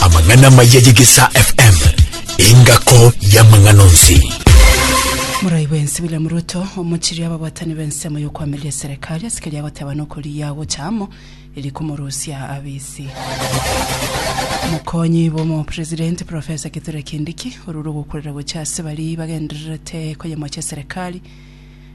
Amang'ana amaya y'Egesaa FM, engako y'amang'ana onsi. Morai bwensi William Ruto omochiri ababwatani b'ensemo y'okwamiria eserekari ase keria agoteba nokorigia agocha amo eri komorusia abisi. Mokonyi bw'omopresidenti Professor Kithure Kindiki orure ogokurera gocha ase baria bagendererete koyemocha eserekari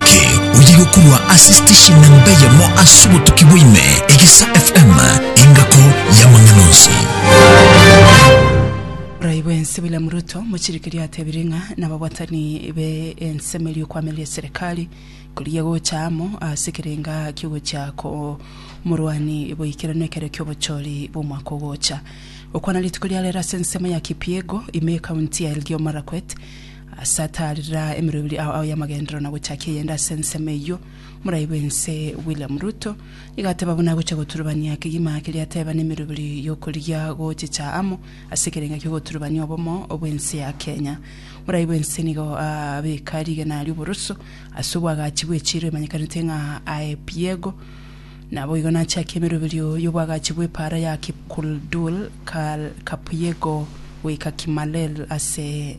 Ki oye gokurwa ase station namba eyemo ase obotuki bwaime egisa FM engako y'amang'ana onsi. Borai bwensi William Ruto mochirikiria atebire ng'a nababwatani be ensemo eria okwamiria eserekari korigia gocha amo ase ekerenga kiogochia komorwani boikeranu ekero kiobochori bw'omwaka ogocha. Gokwana rituko ria rero ase ensemo ya Kipiego ime ekaunti ya Elgeyo Marakwet Asataarera emerero ebere ao ao y'amagenderero na gochakia eyende ase ensemo eyio, Morai bw'ense William Ruto nigo ateba buna agochia goturubania kegima keria ateba n'emerero ebere y'okorigia gochicha amo ase ekerenga ki'ogoturubania obomo bw'ense ya Kenya. Morai bw'ense nigo abeka rigena ri'oboroso ase obwagachi bw'echiiro emanyekanete ng'a Aepiego, naboigo nachakia emerero ebere y'obwagachi bw'epaara ya Kipkuldul, Kal, Kapiego goika Kimalel ase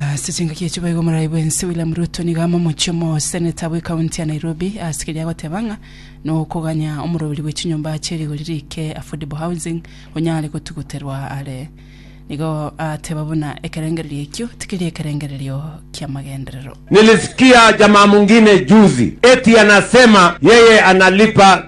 Ase chingaki echi boigo omorai bwense William Ruto nigo amomochie omoseneta bwe county ya Nairobi ase keria agoteba ng'a nokoganya omoroberi bwe chinyomba chie rigori rike affordable housing onyare gotuguterwa are. Nigo ateba buna ekerengererio ekio tikeri ekerengererio kia magenderero. Nilisikia jamaa mwingine juzi eti anasema yeye analipa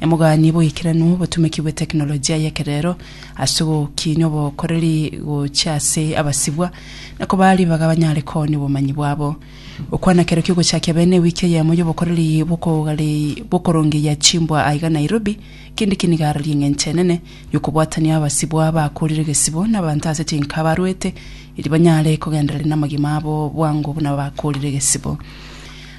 Emoganie boikeranu obotumeki bwe tekinolojia y'ekerero ase ogokiinya obokoreri gochia ase abasibwa na kobaa ribaga banyare koonia obomanyi bwabo. Gokwana kero ki'ogochakia bene ewiki eyemo y'obokoreri bw'okogari- bw'okorongeyia chimbwa aiga Nairobi, Kindiki nigo arari eng'encho enene y'okobwatania abasibwa bakoorire egesibo n'abanto ase chinka abarwete, erio banyare kogendereri namagima abo bwango buna bakoorire egesibo.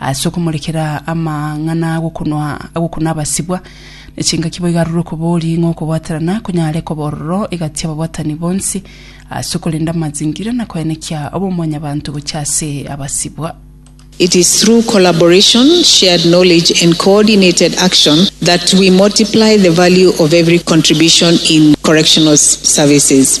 Ase okomorekera amang'ana agokunwa agokuna abasibwa, ne chingaki boigo arure okobori ng'a okobwaterana konyare koba ororo egati y'ababwatani bonsi, ase okorenda amazingira na koenekia obomwanyabanto gochia ase abasibwa. It is through collaboration, shared knowledge and coordinated action that we multiply the value of every contribution in correctional services.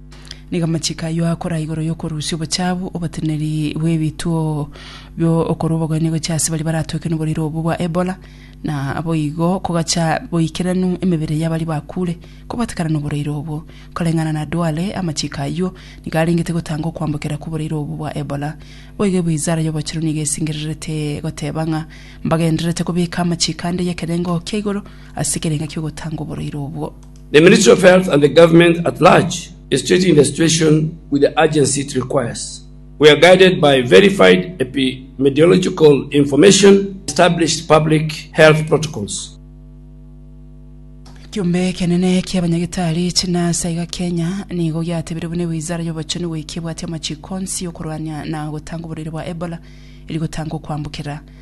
Nigo amachiko ayio akoraa igoro y'okorusia obochaabu, oboteneneri bw'ebituo bi'okorua obogwenia gochia ase baria baratwekire noborwaire obwo bwa Ebola, na boigo kogacha boikeranu emebere y'abaria bakuure kobatekana noborwaire obwo. Koreng'ana na Duale, amachiko ayio nigo arengete gotanga okwambokera kw'oborwaire obwo bwa Ebola. Boigo Ebuizara y'obochenu nigo esingererete goteba ng'a mbagendererete kobeka amachiko ande y'ekerengo kia igoro ase ekerenga ki'ogotanga oborwaire obwo. The Ministry of Health and the Government at large is treating the situation with the urgency it requires. We are guided by verified epidemiological information and established public health protocols. Ekiombe ekenene ki'abanyagitari chinurse aiga Kenya nigo giatebire buna ewizara y'obochenu goika ebwate amachiko onsi y'okorwania na gotanga oborwaire bwa Ebola, eri gotanga okoambokerera.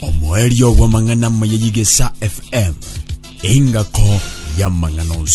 omoerio bw'amang'ana amaya y'Igesa FM, engako y'amang'ana onsi.